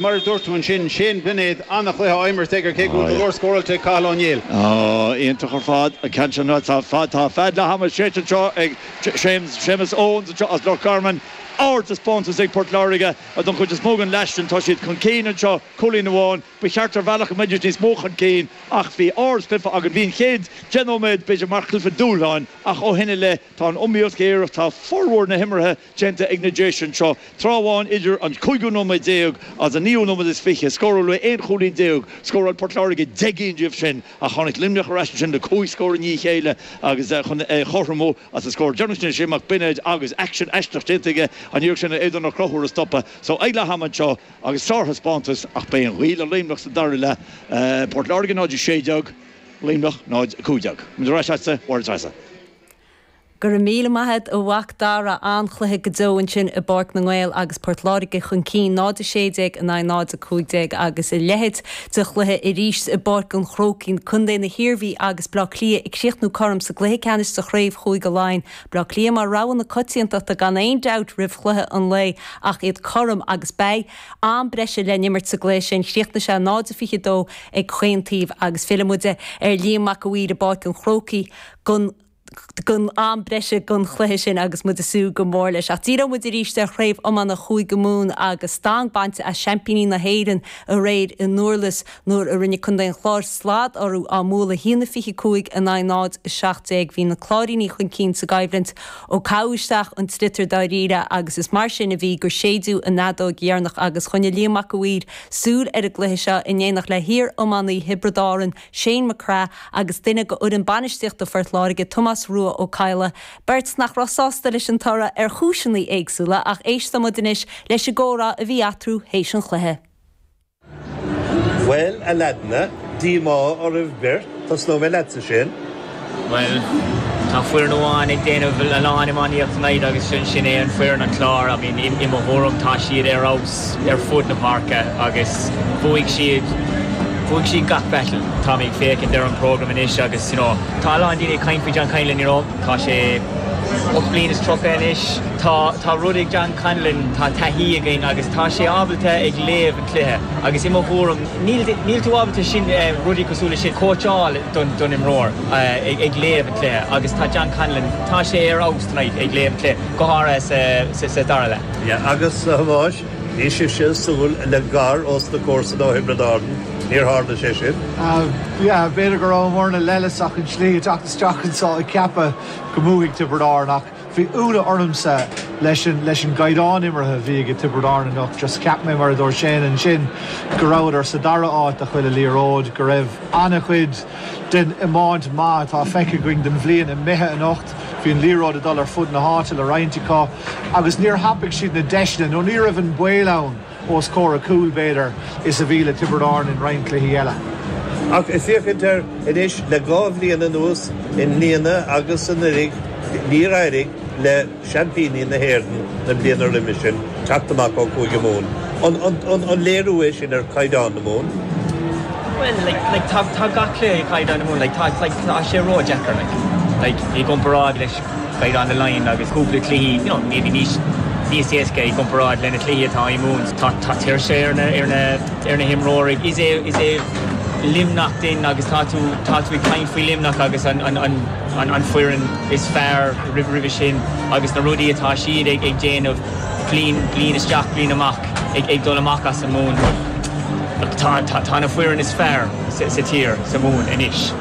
Mar a dúirt tú ansin, Shane Bennett, an-chluiche á imirt aige cé go bhfuil go leor scóráilte ag Cathal Ó Néill. Oh, iontach ar fad. Ceann sin rud, tá fead, tá fead leath ama séidte anseo ag Séamus, Séamus Owens anseo as Loch Garman. Ardtaispeántas ag Port Láirge don chuid is mó den leath sin. Tá siad chun cinn anseo, cúilín amháin. Ba cheart ar bhealach go mbeidís níos mó chun cinn ach bhí ardchluiche againn. Bhí an chéad deich nóiméad b'fhéidir mar chluiche dúshláin ach ó shin i leith tá an iomaíocht géar ach tá formhór na himeartha déanta ag na Déise anseo tráth amháin idir an cúigiú nóiméad déag agus an naoú nóiméad is fiche, scóráladh aon chúilín déag, scóráil Port Láirge deich gcinn díobh sin ach tháinig Luimneach ar ais ansin le cúig scór i ndiaidh a chéile agus chun é a chothromú agus an scór deireanach sin Shane Mac Beinéid agus aicsean aisteach déanta aige in iarracht Aodán Ó Conchúir a stopadh so ag leath ama anseo agus sárthaispeántas ach beidh an ghaoth le Luimneach sa dara leath Port Láirge 0-16 Luimneach 0-15. Go raibh míle maith a'd a Mhac Dara, an-chluiche go deo ansin i bPáirc na nGael agus Port Láirge chun cinn 0 16 in aghaidh 0 15 agus a leithéid de chluiche arís i bPáirc an Chrócaigh, Co na hIarmhí agus Bleá Cliath ag críochnú cothrom sa gcluiche ceannais sa Chraobh Chúige Laighean. Bleá Cliath mar rogha na coitiantachta gan aon dabht roimh chluiche an lae ach iad cothrom agus beidh am breise le n-imirt sa gcluiche sin. Chríochnaigh sé 0 22 ag chaon taobh agus fillfidh muid ar Liam Mac Uidhir i bPáirc an Chrócaigh go don am breise don chluiche sin agus muid ag súil go mór leis. Ach díreoidh muid arís ar Chraobh Iomána Chúige Mumhan agus stang bainte as seaimpíní na hÉireann aréir i nDurlas nuair a rinne contae an Chláir slad orthu á mbualadh 1-25 in aghaidh 0-17. Bhí na Cláirínigh chun cinn sa gcoimhlint ó caitheadh isteach an sliotar dáiríre agus is mar sin a bhí gur séideadh an fheadóig dheireanach agus choinnigh Liam Mac Uidhir súil ar an gcluiche seo in éineacht le hiar-iománaí Thiobraid Árann, Shane McGrath agus duine go fhoireann bainistíochta Phort Láirge, Tomás Rua Ó Cadhla, beirt nach raibh sásta leis an toradh ar chúiseanna éagsúla ach éistimid anois leis an gcomhrá a bhí eatarthu théis an chluiche. Bhuel, a leaideanna, díomá oraibh beirt, tosnóidh mé leatsa, Shane. Bhuel, tá foireann amháin ag déanamh a lán iománaíocht tonight agus sin sin é an foireann an Clár. I mean i mo thuaraim tá siad ar fheabhas ar fud na páirce agus bhuaigh siad, bhuaigh siad gach battle. Tá mé ag féachaint ar an program anois agus you know, tá a lán daoine ag caint faoi John Conlon you know, tá sé ocht bliain is tríocha anois. Tá, tá rud ag John Conlon, tá taithí aige agus tá sé ábalta ag léamh an cluiche agus i mo thuaraim, Níl tú ábalta sin rudaí cosúil le sin cóitseáil don imreoir ag léamh an cluiche agus tá John Conlon, tá sé ar fheabhas tonight ag léamh an cluiche, go háirithe sa dara leath. Yeah agus a Thomáis, bhí sibhse ag súil le gar ós na comharsana ó Thiobraid Árann, níor tharla sé sin? Yeah b'fhéidir go raibh an bhfoirne leighis ach an tslí ag teacht isteach anso ag ceapadh go mbuafaidh Tiobraid Árann ach Bhí ionadh ormsa leis an gcaighdeán imeartha a bhí age Tiobraid Árann anocht. Just cheap mé, mar a dúirt Shane ansin, go rabhadar sa dara háit do chuile liathróid, go raibh ana-chuid den iomáint maith atá feicthe againn den bhliain imithe anocht. Bhí an liathróid ag dul ar fud na háite le roinnt acu agus níor thapaigh siad na deiseanna nó ní raibh an baol ann. os comhair an chúil, b'fhéidir, is a bhí le Tiobraid Árann in roinnt cluichí eile. Ach ag féachaint air anois le dhá bhliain anuas, i mbliana agus anuraidh, níor éirigh le seaimpíní na hÉireann na bliana roimhe sin teacht amach ó Chúige Mumhan. An léiriú é sin ar chaighdeán na Mumhan? Bhuel, like, tá gach cluiche ag caighdeán na Mumhan. Like, tá sé ródheacair, like, i gcomparáid leis Leinster down the line agus cúpla cluichí, you know, maybe níos níos éasca i gcomparáid le na cluichí atá i Mumhain. Tá tá tuirse ar na ar na ar na himreoirí. Is é is é Luimneach dúinn agus tá tú tá tú ag caint faoi Luimneach agus an an an an an foireann is fearr roimh roimhe sin agus na rudaí atá siad ag ag déanamh bliain bliain isteach bliain amach ag ag dul amach as an Mumhain. Tá tá tá na foireann is fearr sa sa tír sa Mumhain anois.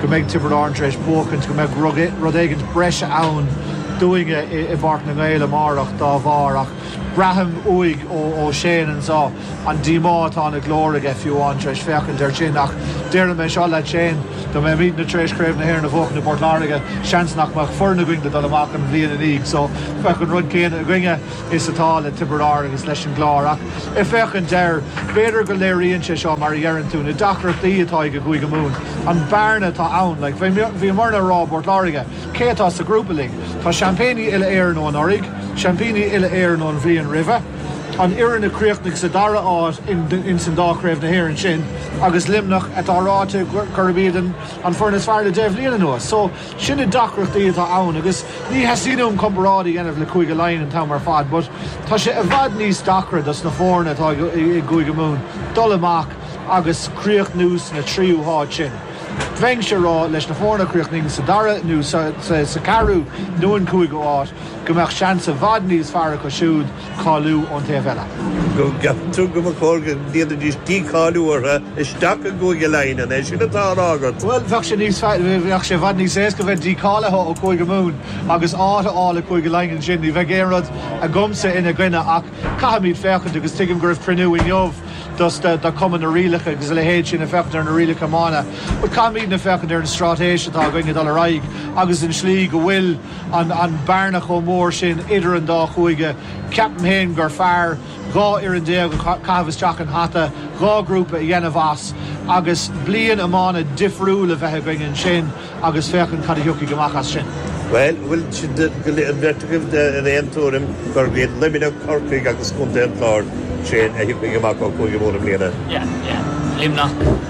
go mbeidh Tiobraid Árann tar éis buachaint, go mbeidh rud éigint breise ann dúinne i bPáirc na nGael amárach dá bharr ach braithim uaidh, ó Shane ansan, an díomá atá ina ghlór aige fiú amháin tar éis féachaint air sin. Ach déarfaidh mé seo leat Shane, dá mbeimidne tar éis Craobh na hÉireann a bhuachan i bPort Láirge, seans nach mbeadh foireann againn le dul amach an bhliain i ndiaidh so, bheadh an rud céanna againne. is atá le Tiobraid Árann is leis an gClár ach ag féachaint air, b'fhéidir go léiríonn sé seo, mar a dheireann tú, na deacrachtaí atá ag Cúige Mumhan, an bearna atá ann. Like, bhíomar á rá i bPort Láirge, cé atá sa ghrúpa linn? Tá seaimpíní uile-Éireann ó anuraidh, seaimpíní uile-Éireann ón bhliain roimhe, an fhoireann a chríochnaigh sa dara háit in san dá chraobh na hÉireann sin agus Luimneach atá ráite gurb iad an foireann is fearr le deich mbliain anuas. So. Sin na deacrachtaí atá ann agus ní theastaíonn uaim comparáid a dhéanamh le Cúige Laighean an t-am ar fad but tá sé i bhfad níos deacra dos na foirne atá i gCúige Mumhan dul amach agus críochnú sna trí háit sin. Bheinnse ag rá leis na foirne a chríochnaíonn sa dara nó sa ceathrú nó an cúigiú áit go mbeadh seans i bhfad níos fearr acu siúd cáiliú ón taobh eile. Go gceaptar go mba chóir go ndéanfaidís dícháiliú orthu isteach i gCúige Laighean, an é sin atá á rá agat? Bhuel, bheadh sé níos fearr, bheadh sé i bhfad níos éasca bheith dícháilithe ó Chúige Mumhan agus áit a fháil i gCúige Laighean ansin. Ní bheadh aon rud agamsa ina choinne ach caithfimid féachaint agus tuigim go raibh cruinniú inniu dos na, do Chumann na Rialacha agus a leithéid sin, ag féachaint ar na rialacha iomána. But caithfimidne féachaint ar an stráitéis atá againn ag dul ar aghaidh agus an tslí go bhfuil, an bearna chomh mór sin idir an dá chúige. Ceapaim féin gur fearr dhá fhoireann déag a chaitheamh isteach isteach i hata, dhá ghrúpa a dhéanamh as agus bliain iomána difriúil a bheith againn ansin agus féachaint cad a thiocfaidh amach as sin. Bhuel, bhfuil an bheirt agaibh ar aon tuairim gurb iad Luimneach, Corcaigh agus Contae an Chláir sin a thiocfaidh amach ó Chúige Mumhan i mbliana? Luimneach.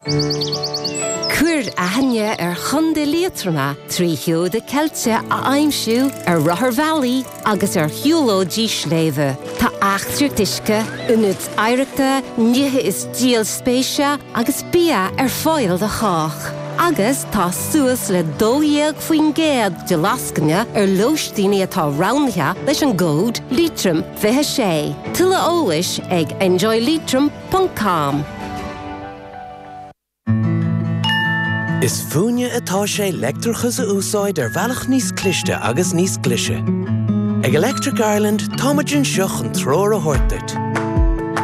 Cuir aithne ar Chontae Liatroma trí sheoda ceilte a aimsiú ar rotharbhealaí agus ar shiúlóidí sléibhe. Tá eachtraí uisce, ionaid oidhreachta, nithe is díol spéise agus bia ar fáil do chách. Agus tá suas le 12% de lascaine ar lóistíní atá roghnaithe leis an gcód Leitrim 26. Tuilleadh eolais ag enjoyleitrim. ponc com. Is fúinne atá sé leictreachas a úsáid ar bhealach níos cliste agus níos glise. Ag Electric Ireland, táimid anseo chun treoir a thabhairt duit.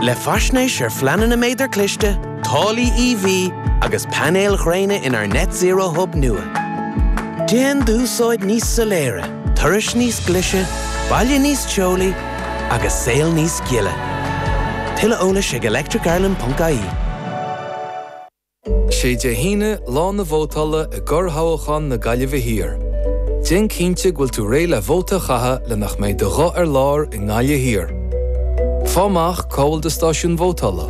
Le faisnéis ar phleananna méadar cliste, táillí EV agus painéil ghréine inár Net Zero Hub nua. Déan d'úsáid níos soiléire, turais níos glise, baile níos teolaí, agus saol níos gile. Tuilleadh eolais ag electricireland.ie. Sé Dé hAoine lá na vótála i gcorrthoghchán na Gaillimhe Thiar. Déan cinnte go bhfuil tú réidh le vóta a chaitheamh le nach mbeidh do ghuth ar lár i nGaillimh Thiar. Faigh amach cá bhfuil do stáisiún vótála.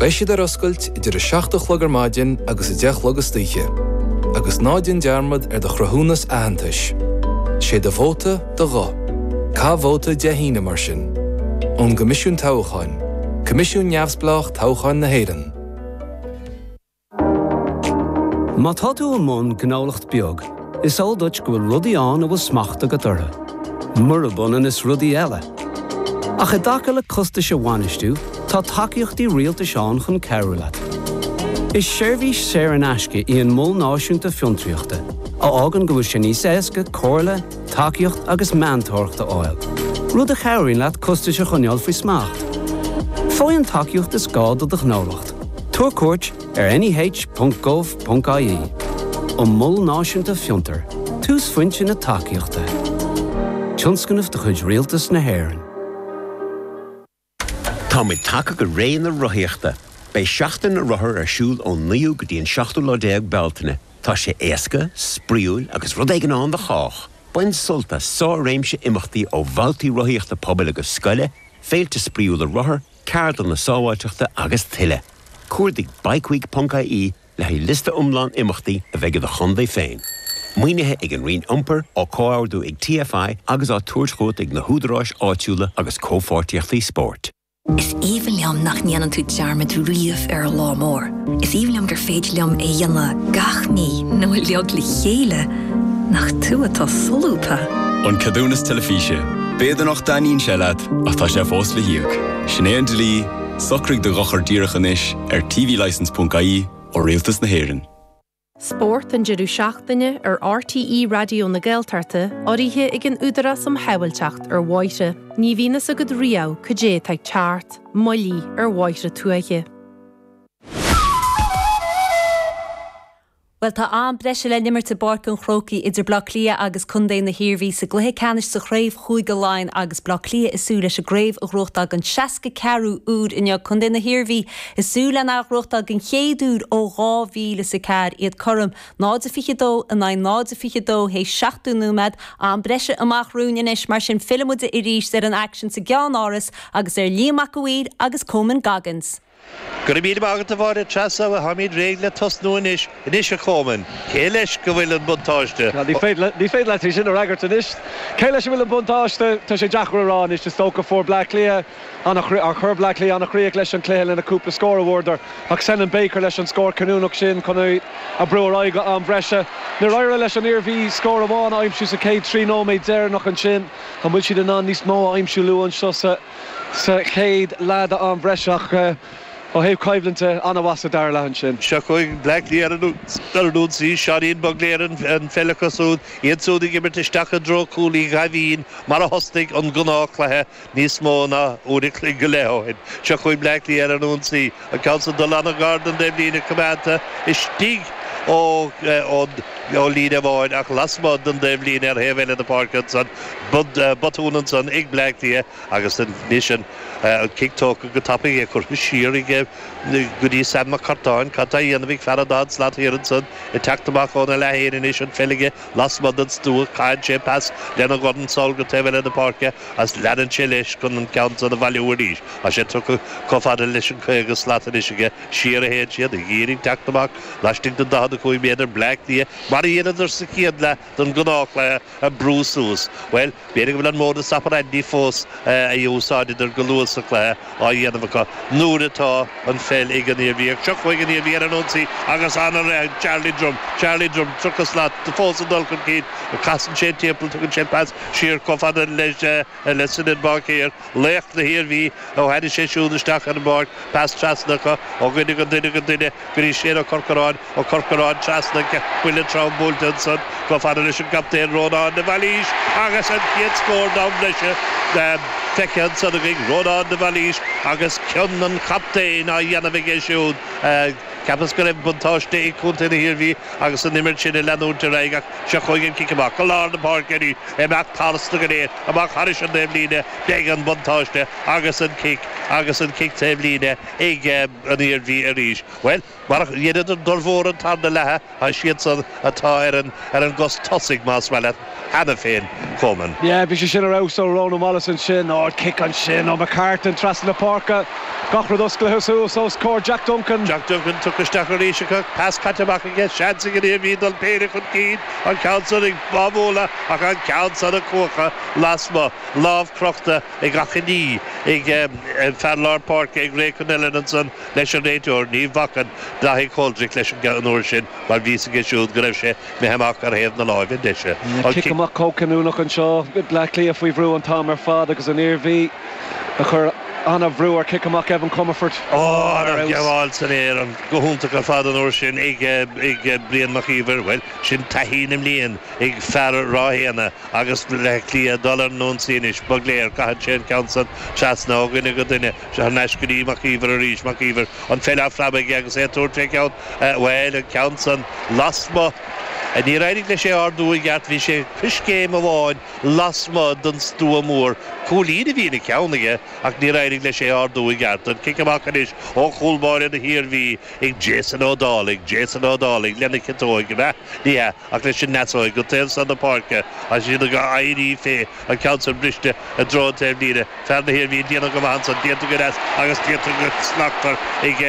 Beidh siad ar oscailt idir 7 a chlog ar maidin agus 10 a chlog istoíche. Agus ná déan dearmad ar do chruthúnas aitheantais. Sé do vóta. do ghuth. Caith vóta Dé hAoine, mar sin. Ón gCoimisiún Toghcháin, Coimisiún neamhspleách toghcháin na hÉireann. Má tá tú i mbun gnólacht beag, is eol duit go bhfuil rudaí ann a bhfuil smacht agat orthu, murab ionann is rudaí eile. Ach i dtaca le costais a bhainistiú, tá tacaíochtaí rialtais ann chun cabhrú leat. Is seirbhís saor in aisce í an Mol Náisiúnta Fiontraíochta, a fhágann go bhfuil sé níos éasca comhairle, tacaíocht agus meantóireacht a fháil, rud a chabhraíonn leat costais a choinneáil faoi smacht. Faigh an tacaíocht is gá do do ghnólacht, tabhair cuairt ar neh.gov.ie An Mol Náisiúnta Fiontar, Túsphointe na Tacaíochta, tionscnamh de chuid Rialtas na hÉireann. Táimid tagtha go ré na rothaíochta. Beidh Seachtain na Rothar ar siúl ón 9ú go dtí an 7ú déag Bealtaine. Tá sé éasca, spraíúil agus rud éigin ann do chách! Bain sult as sár-réimse imeachtaí ó bhabhtaí rothaíochta pobail agus scoile, féilte spraíúla rothar, ceardlanna sábháilteachta agus tuilleadh. Cuardaigh bikeweek.ie Le haghaidh liosta iomlán imeachtaí a bheidh i do chontae féin, maoinithe ag an Roinn Iompair, á comhordú ag TFI agus á tabhairt chugat ag na húdaráis áitiúla agus Comhpháirtíochtaí Spóirt. Is aoibhinn liom nach ndéanann tú dearmad riamh ar lá mór. Is aoibhinn liom gur féidir liom é a dhéanamh gach mí nó uiliog le chéile, nach tú atá solúbtha! An Ceadúnas Teilifíse, B'fhéidir nach dtaitníonn sé leat ach tá sé fós le híoc. Sin é an dlí. Socraigh do dhochar díreach anois ar tvlicense.ie ó Rialtas na hÉireann. Spórt an deireadh seachtaine ar RTÉ Raidió na Gaeltachta urraithe ag an Údarás um Shábháilteacht ar Bhóithre Ní bhíonn fhios agat riamh cad é atá ag teacht, moilligh ar bhóithre tuaithe. Bhuel tá am breise le n'imirt i bPáirc an Chrócaigh idir Bleá Cliath agus Contae na hIarmhí sa gcluiche ceannais sa gcraobh Chúige Laighean agus Bleá Cliath ag súil leis an gcraobh a ghnóthachtáil don 64ú uair inniu. Contae na hIarmhí ag súil lena ghnóthachtáil den chéad uair ó 2000 's a ceathair, iad cothrom 0-22 in aghaidh 0-22 théis 70 nóiméad. Am breise amach romhainn anois mar sin fillfimid arís ar an aicsean sa gCeann-Áras agus ar Liam Mac an Mhaoir agus Cóman Goggins. Go raibh míle maith agat a Mháire Treasa, táimid réidh le tosnú anois. Anois a Chóman, cé leis go bhfuil an buntáiste? Ní féidir leat é sin a fhreagairt anois. Cé leis a bhfuil an buntáiste? Tá sé deacair a rá anois. Is dócha fuair Bleá Cliath ana chr, chuir Bleá Cliath ana chríoch leis an cluiche leis na cúpla scór a bhfuaireadar, ach Senan Baker leis an scór cinniúnach sin chun í a brú ar aghaidh go am breise. Níor éirigh leis an Iarmhí scór amháin a aimsiú sa chéad tríocha nóiméad deireanach ansin. An bhfuil siad in ann níos mó a aimsiú luath anseo sa. sa chéad leath d'am breise ach ó thaobh coimhlinte, an-mhaith sa dara leath ansin. Seo chugaibh Bleá Cliath ar an ionsaí, Seáinín Bugler an pheil aige siúd, iad siúd ag imirt isteach i dtreo cúl Uí Dhaimhín mar a thosnaigh an gnáth cluiche níos mó ná uair a chloig go leith ó shin. Seo chugaibh Bleá Cliath ar an ionsaí. An ceann san dulta i ngar don taobhlíne coimeádta istigh ó líne amháin ach lasmuigh den taobhlíne ar thaobh eile na páirce ansan botún ansan ag Bleá Cliath agus anois an cic tógtha go tapaidh é curtha siar aige go dtí Sam McCartan. Cad tá a dhéanamh ag fear an dá slat thiar ansan ag teacht amach óna leath féin anois an pheil aige lasmuigh den stua caitheann sé pas lena dhorn sall go taobh eile na páirce Is leanann sé leis chun an ceann san a bhailiú arís. Tá sé tugtha chomh fada leis an 50 slat anois aige siar a théann siad, ag iarraidh teacht amach laistigh den 45 méadar Bleá Cliath mar a dheineadar sa chéad leath den ghnáthchluiche ag brú suas. Bhuel, b'fhéidir go bhfuil an modus operandi fós a úsáideadar go luath sa chluiche, á dhéanamh acu nuair atá an pheil ag an Iarmhí, ach seo chugaibh an Iarmhí ar an ionsaí agus ana rith Charlie Drumm, Charlie Drumm, tríocha slat do fós ag dul chun cinn, casann sé timpeall, tugann sé pas siar chomh fada leis le Senan Baker, laoch na hIarmhí, ó tháinig sé siúd isteach ar an bpáirc, pas trasna acu ó dhuine go nduine go nduine. go dtí Séan Ó Corcoráin, Ó Corcoráin trasna buille trom buailte ansan chomh fada leis an gcaptaen Rónán de Bhailís agus an chéad scór d'am breise feicthe ansan againn, Rónán de Bhailís agus cion an chaptaein á dhéanamh aige siúd. Cheapas go raibh buntáiste ag Contae na hIarmhí agus an imirt sin ag leanúint ar aghaidh ach seo chugainn an cic amach go lár na páirce arís, imeacht tharstu go léir, amach thairis an taobhlíne, beidh an buntáiste agus an cic agus an cic taobhlíne ag. an Iarmhí arís. Bhuel, mar a dheineadar formhór an tarna leatha, is iad san atá ar an, ar an gcos tosaigh más maith leat, cheana féin chomh maith. Yeah, bhí sé sin ar fheabhas ó Rónán Wallace ansin, ard chic ansin ó McCartan trasna na páirce, gach rud osclaithe suas os comhair Jack Duncan. Jack Duncan tugtha isteach arís acu, pas caite amach aige, seans ag an Iarmhí dul péire chun cinn, an ceann san ag Bábhóla ach an ceann san a cuachadh lasmuigh, lámh crochta. ag achainí, ag fear lár páirce ag Ray Connellan ansan leis an réiteoir, ní bhacann Daithí Coldrick leis an an uair sin mar bhí a fhios aige siúd go raibh sé imithe amach ar thaobh na láimhe deise. An cic amach chomh cinniúnach anseo, Bleá Cliath faoi bhrú an t-am ar fad agus an Iarmhí ag cur an-bhrú ar chic amach Evan Comerford. Ó, an ghabháil san aer go hiontach ar fad an uair sin ag, ag, Brian Mac Íomhair, bhuel, sin taithí na mblian ag fear Ráth Éanna. agus Baile Átha Cliath ag dul ar an ionsaí anois. Bugler, caitheann sé an ceann san trasna ó dhuine go duine. Seo anois go dtí Mac Íomhair arís. Mac Íomhair, an pheil á phreabadh aige agus é ag tabhairt fé cheann, bhuel, an ceann san lasmuigh. Níor éirigh leis é ardú i gceart, bhí sé coiscéim amháin lasmuigh den stua mór. Cúilín a bhí ina cheann aige ach níor éirigh leis é ardú i gceart. An cic amach anois ó chúl báire na hIarmhí ag Jason Ó Dálaigh. Jason Ó Dálaigh lena chiotóig, ab ea? Ní hea. Ach leis an ndeasóig go dtí an taobh san na páirce agus iad ag éirí fé, an ceann san briste i dtreo an taobhlíne, fear na hIarmhí ag déanamh go maith ansan, déanta go deas agus déanta go slachtmhar ag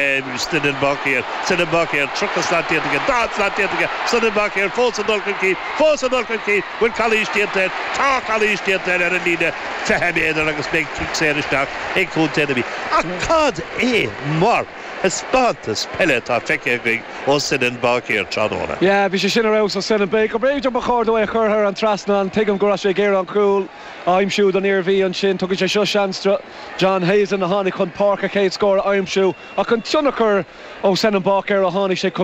Senan Báicéir. Senan Báicéir, tríocha slat déanta aige, daichead slat déanta aige, Senan Báicéir fós ag dul chun cinn, fós ag dul chun cinn, bhfuil calaois déanta air, tá calaois déanta air ar an líne fiche méadar agus beidh cic saor isteach ag Contae na Mí. Ach cad é mar. thaispeántas peile atá feicthe againn ó Senan Báicéir tráthnóna. Yeah, bhí sé sin ar fheabhas ó Senan Baker. B'fhéidir go mba chóir dó é a chur thar an trasnán. Tuigim go raibh sé ag iarraidh an cúl a aimsiú don Iarmhí ansin. Tugann sé seo seans do John Heslin a tháinig chun páirc a chéad scór a aimsiú. Ach an tionchar ó Senan Baker ó tháinig sé chun